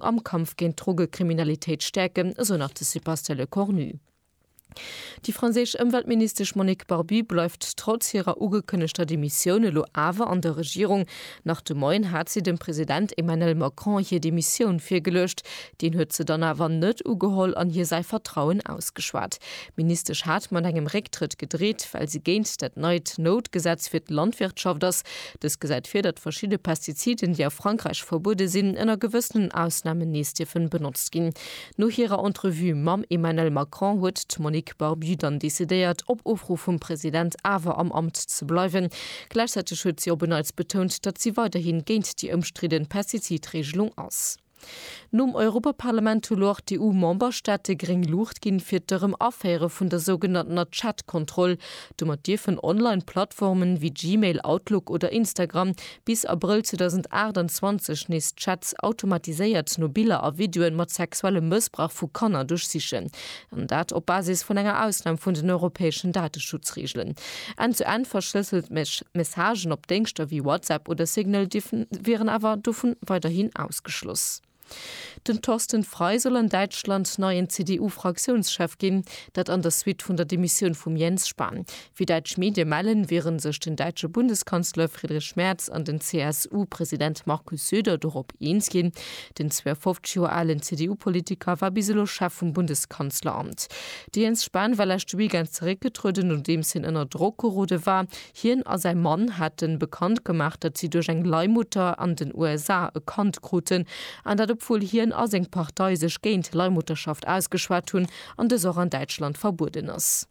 am Kampf géint d'Drogekriminalitéit stäerken, esou nach de Sebastian Lecornu. Déi franséisch Ëmweltministesch Monique Barbu bleift trotz hirer ugekënnegter Demissioun elo awer an der Regierung. Nach de Moien hat si dem President Emmanel Macron hir Demissioun virgeluecht. Deen huet se dann awer net ugeholl an hir säi Vertrauen ausgeschwat. D'Ministesch hat mat engem Récktrëtt gedreet, well si géint dat neit Noutgesetz fir d'Landwirtschaft ass, Dës gesäit vir, datt verschidde Pestiziden, déi a Frankräich verbuede sinn, ënner gewëssenen Ausnamen nees dierfen benotzt ginn. No hirer Entrevue mam Emmanel Macron huet d'Monique Barbu dann decidéiert, op Ofruff vum President awer am Amt ze bleiwen. Gläichzäiteg huet si op en Neits betount, datt si weiderhi géint déi ëmstridden Pestizidreegelung ass. Nom Europaparlament hu lo och d'EU-Memberstaate gréng Luucht ginn, fir d'Erëm-Aféiere vun der sougenanntener Chat-Kontroll. Domat dierfen Online-Plattformen, wéi Gmail, Outlook oder Instagram, bis Abrëll 2028 nees Chats automatiséiert no Biller a Videoe mat sexuellem Mëssbrauch vu Kanner duerchsichen. an dat op Basis vun enger Ausnam vun den europäeschen Dateschutzreegelen. End-to-end verschlësselt Messagen op Déngschter wéi WhatsApp oder Signal wieren awer dovun weiderhin ausgeschloss. Den Thorsten Frei soll an Däitschland neien CDU-Fraktiounschef ginn, dat an der Suite vun der Demissioun vum Jens Spahn. Wéi däitsch Medie mellen, wiere sech den däitsche Bundeskanzler Friedrich Merz an den CSU-President Markus Söder dorop eens ginn. Den 52 Joer alen CDU-Politiker war bis elo Chef vum Bundeskanzleramt. De Jens Spahn war leschte Weekend zeréckgetrueden, nodeems hien ënner Drock gerode war. Hien a säi Mann hate bekannt gemaach, datt si duerch eng Leihmutter an den USA e Kand kruten. An dat obwuel hien a seng Partei sech géint Leihmutterschaft ausgeschwat hunn an dës och an Däitschland verbueden ass.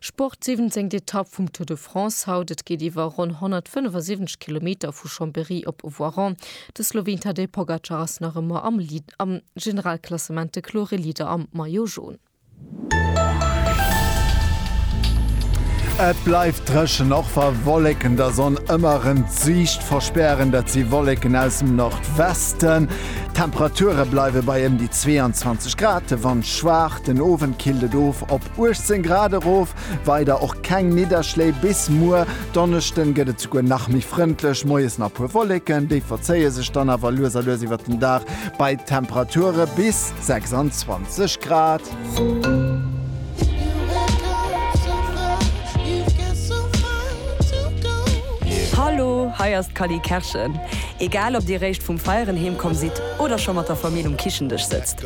Sport, siwwenzéngt Etapp vum Tour de France haut, et geet iwwer ronn 175 Kilometer vu Chambéry op Voiron. De Sloween Tadej Pogacar ass nach ëmmer am Lead am Generalklassement, de klore Leader am Maillot Jaune. Et bleift dréchen, och wa Wolleken der Sonn ëmmer erëm d'Siicht verspären. Dat si Wolleken aus dem Nordwesten. D'Temperature bleiwe bei ëm déi 22 Grad, de Wand schwaach. Den Owend killt et of op 18 Grad erof, weider och keng Nidderschléi bis muer Donneschden gëtt et souguer nach méi frëndlech, moies nach puer Wolleken, déi verzéie sech dann awer lues a lues iwwert den Dag bei Temperature bis 26 Grad. Hallo, hei ass d'Cally Kerschen. Egal ob dir réischt vum Feieren heemkomm sidd oder scho mat der Famill um Kichendësch sëtzt,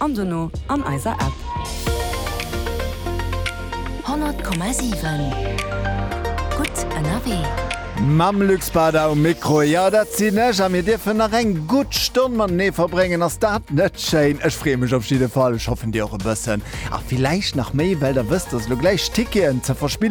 an dono an eiser App. 100,7 gutt ënnerwee. Mam Luc Spada um Mikro, jo dat sinn ech, a mir dierfen nach eng gutt Stonn matenee verbréngen. Ass dat net schéin? Ech freeë mech op jidde Fall, ech hoffen dir och e bëssen, a villäicht nach méi, well der wësst, dass elo gläich Ticketen ze verspillen.